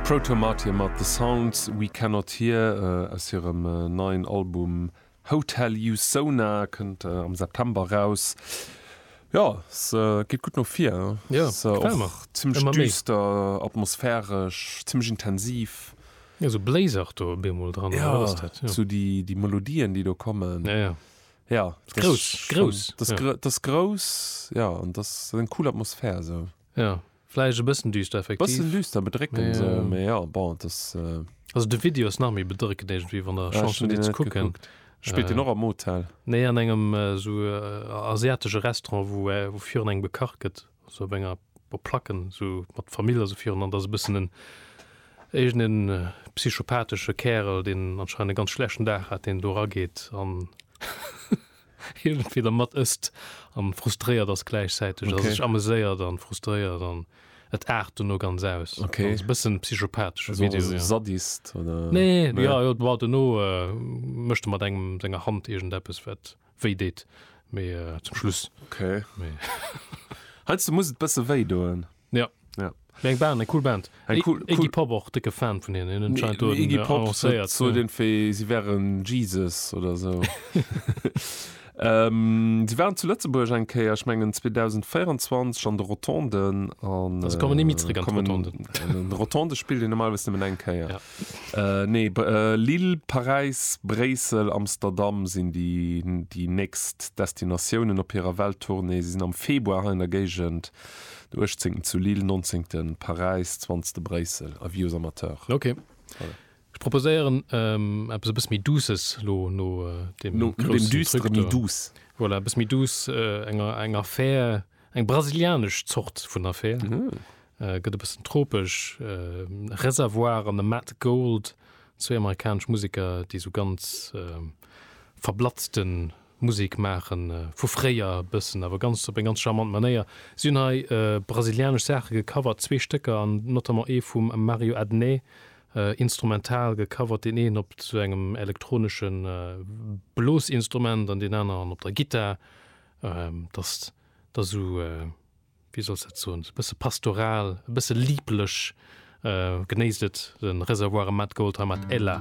Proto Martyr mat The Sounds We Cannot Hear aus hirem neien Album Hotel You Sona, kënnt am September raus. Jo, se geet gutt no vir, ass och zimmlech düster, atmosphäresch, zimmlech intensiv. Jo, sou bléisert do op eemol dran. Jo, sou déi Melodien, déi do kommen. Jo, jo. Jo, ass grouss, grouss. Ass grouss, jo, an ass eng cool Atmosphär esou. Jo. Vläicht e bëssen düster effektiv. Bëssen düster, bedréckend sou, mee jo bon et ass. Also de Video ass nach méi bedréckend iergendwéi, wann der Chance hutt deen ze kucken. Spillt deen och am Hotel? Nee an engem sou asiatesche Restaurant wou wou virun engem gekacht gëtt, sou op enger op Placken sou mat d'Famill a sou virun an et ass e bëssen en iergend en psychopathesche Kärel deen anscheinend e ganz schlechten Dag hat deen do erageet an. iergendwéi der mat ësst an frustréiert ass gläichzäiteg, also Okay. sech ameséiert an frustréiert an et aart dono ganz aus. Okay. Also bëssen psychopathesche Also Video, ja. Sadist oder? Nee, Nee. ja, jo, war dono äh, mécht e mat engem senger Hand iergendeppes wat wéi deet, mee äh, zum Schluss, Okay. mee. Heiansdo muss et bësse wéi doen. Ja. Ja. Mee eng Band, eng cool Band. Eng I- cool- Iggy cool- Pop och dicke Fan vun hinnen. Hinnen Nee, scheint do Iggy den, äh, Pop annoncéiert, so ja. den wéi si wären Jesus oder so. ähm, si waren zu Lëtzebuerg eng Kéier, ech mengen 2024 an de Rotonden an Also kommen ni méi zréck an kommen- d'Rotonden. Den Rotonde spillt een normalerweis nëmmen eng Kéier. Ja. Äh, nee, Br- äh, Lille, Paräis, Bréissel, Amsterdam sinn déi, déi nächst Destinatiounen op hirer Welttournée. Si sinn am Februar hei an der Géigend. Den uechtzéngten zu Lille, nonzéngten Paräis, zwanzte Bréissel, avis aux amateurs. Ok, ech proposéieren eppes e bësse méi douces lo no deem No deem groussen Düstere Truc méi do. douce. Voilà, e bësse méi douce, eng eng Affär, eng brasilianesch Zort vun Affär, gëtt e bëssen tropesch, Reservoir an de Matt Gold, zwéi amerikanesch Museker, déi esou ganz verblatzte Musek maachen vu fréier e bëssen, awer ganz op eng ganz charmant Manéier. Si hunn hei brasilianesch Saache gecovert, zwee Stécker an notamment ee vum Mario Adnet instrumental gecovert, deen een op sou engem elektronesche Blosinstrument an deen aneren op der Gittar, datt der esou, wéi soll ech dat soen, esou e bësse pastoral, e bësse liblech. Genéisst et, de Reservoir a Matt Gold hei mat Ela.